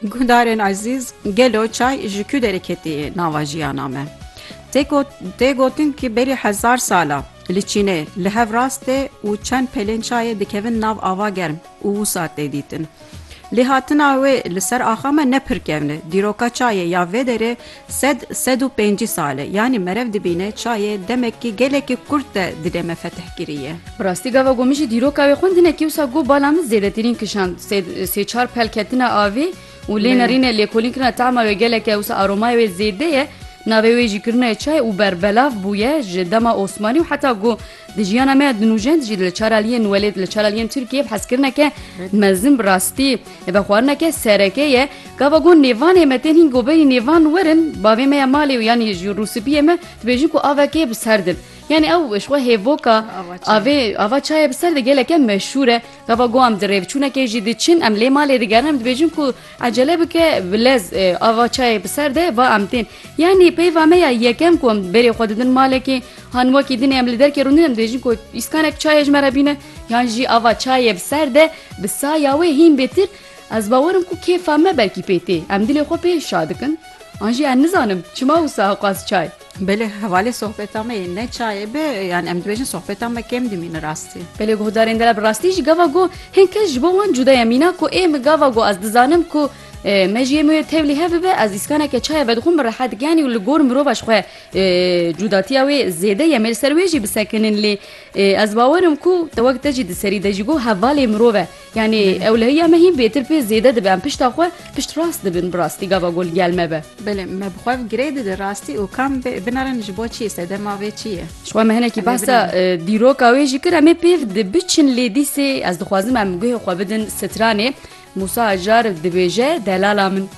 Guhdarên ezîz, gelo çay ji ku derê ketiye nava jiyana me? Tê gotin ku berî hezar sal e li Çînê li hev rastê û çend pelên çayê dikevin nav ava germ û wisa tê dîtin. Lêhatina wê li ser axa me ne pir kevn e. Dîroka çayê ya vê derê Sed, sed û pêncî sal e. Yanî merev dibîne çayê demekî gelekî kurt de dilê me fetih kiriye. Bi rastî gava ku min jî dîroka wê xwendine kewsa ku bala min zêdetirîn kişand. Sê, sê çar pel ketine avê û lê nerîne lêkolîn kirina tahma wê gelek e wisa aromaya wê zêde ye. Navê wê jî kirine çay û berbelav bûye ji dema Osmanî û heta ku Di jiyana me di nûjend jî li çar aliyên welêt û li çar aliyên Tirkiyê bi hezkirineke mezin bi rastî vexwarineke sereke ye. Gava got nêvanê me tên hîn goberî nêvan werin bavê me ya malê û yanî ji rûspiyê me dibêjin ku avekê bi ser din. Yanî ew ji xwe hêvoka avê ava çayê bi ser de geleke meşhûr e. Gava got em di rêvçûnekê jî diçin em lê malê digerin em dibêjin ku Ecele bike bilez axa çayê bi ser de va em tên. Yanî peyva me ya yekem ku em berê xwe didin malekê han wekî dinê em li derkê rûnin em dibêjin ku îskanek çayê ji me re bîne yan jî ava çayê bi ser de bi saya wê hîn bêtir ez bawer im ku kêfa me belkî pê tê em dilê xwe pê şa dikin an jî ez nizanim çima wisa xwest çay Belê hevalê sohbeta me yê ne çayê be yan em dibêjin sohbeta me kêm dimîne rastî. Belê guhdarên dela bi rastî jî gava got hên kes ji bo wan cuda ye mîna ku ê min gava got ez dizanim ku me jî yê min wê tevlî hev bibe ez îskaneke çayê vedixwim bi rehet giyanî û li gor mirova ji xwe cudatiya wê zêde ye me li ser wê jî bisekinin lê ez bawer im ku te wek te jî di serî de jî got hevalê mirov e. Yanî ewlehiya me hîn bêtir pê zêde dibe em pişta xwe pişt rast dibin bi rastî gava gul gel me be. Belê me bi xwe girê dide rastî û kam binarin ji bo çi sedema vê çi ye. Ji xwe me hinekî behsa dîroka wê jî kir em ê pêv di biçin lê dîsê ez dixwazim em guhê xwe bidin stranê Mûsa Acar dibêje delala min.